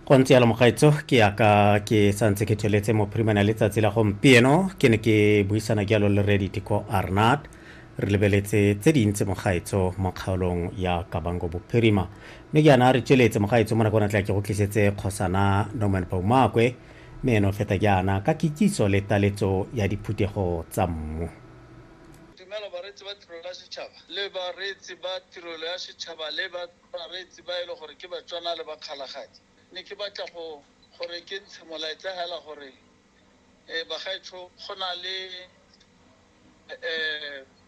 go ntse yalo mogaetso ke yaka ke santse ke tsweletse mo primana letsatsi la gompieno ke ne ke buisana ke yalo le redit ko arnat re lebeletse tse dintsi mogaetso mo kgaolong ya kabango bophirima mme ke yana re tsweletse mogaetso mo nakong tla ke go tlisetse kgosana norman baumakwe mme eno feta ke ana ka kitsiso le taletso ya diphuthego tsa mmu dumela bareetsi ba tirelo ya setšhaba le bareetsi ba tirelo ya setšhaba le ba Bareetsi ba e le gore ke Batswana le Bakgalagadi, ne ke batla go gore ke ntshe molaetsa hela gore bagaetsho go na le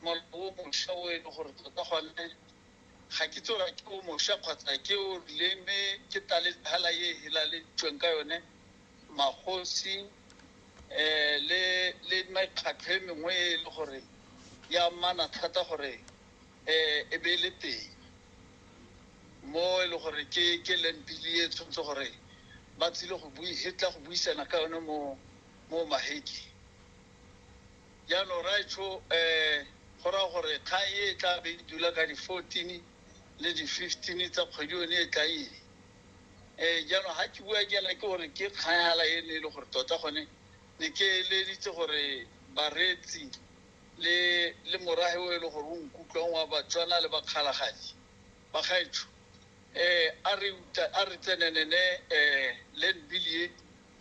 molao o mosha o e le gore tota gone ga ke itse gore ke o mosha kgotsa ke o rileng mme ke taletsa hela e hilaleditsweng ka yone magosi le mekgatlho e mengwe e le gore ya mmana thata gore e be e le teng mo e le gore ke ke lempili e tshwanetse gore ba tsile go bui e tla go buisana ka yone mo mo maheke jaanong raetsho um go raya gore kgang e e tla be e dula ka di-fourteen le di-fifteen tsa kgwedi yone e tla eng um jaanong ga ke bua jaana ke gore ke kgang fela e ne e le gore tota gone ne ke eleditse gore bareetsi le le morahe o e leng gore o nkutlwang wa Batswana le bakgalagadi ba gaetsho um a re uta a re tsenenene um land bill e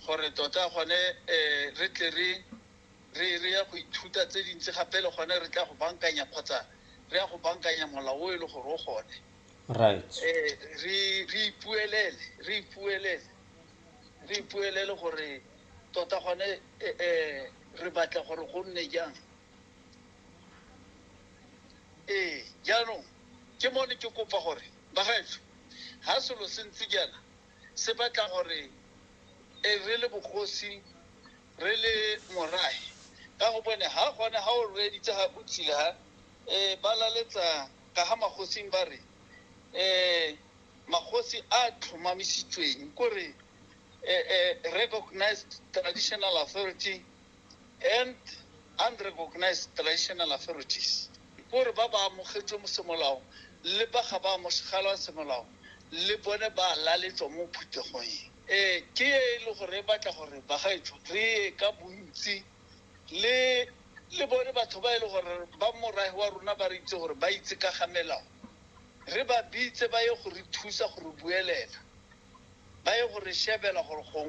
gore tota gone um re tle re re re ya go ithuta tse dintsi gape le gone re tla go bankanya kgotsa re ya go bankanya molao o e le gore o gone right um re re ipuelele re ipuelele re ipuelele gore Tota gone re batla gore go nne jang? Ee, jaanong ke mone ke kopa gore bagaetsho, ga selo se ntse jaana se batla gore re le bogosi re le morae ka go bone ga gone ga o reeditse ga o tshile ga um ba laletsa ka ga magosing ba re um magosi a tlhomamisitsweng kore a, a recognized traditional authority and unrecognized traditional authorities gore ba ba amogetswe mo semolao le ba ga ba amogelwa semolao le bone ba laletswa mo phuthegong e um ke e le gore e batla gore bagaetsho re ye ka bontsi le le bone batho ba e le gore ba morae wa rona ba re itse gore ba itse ka ga melao re ba bitse ba ye go re thusa go re buelela, ba ye go re shebela gore gongwe.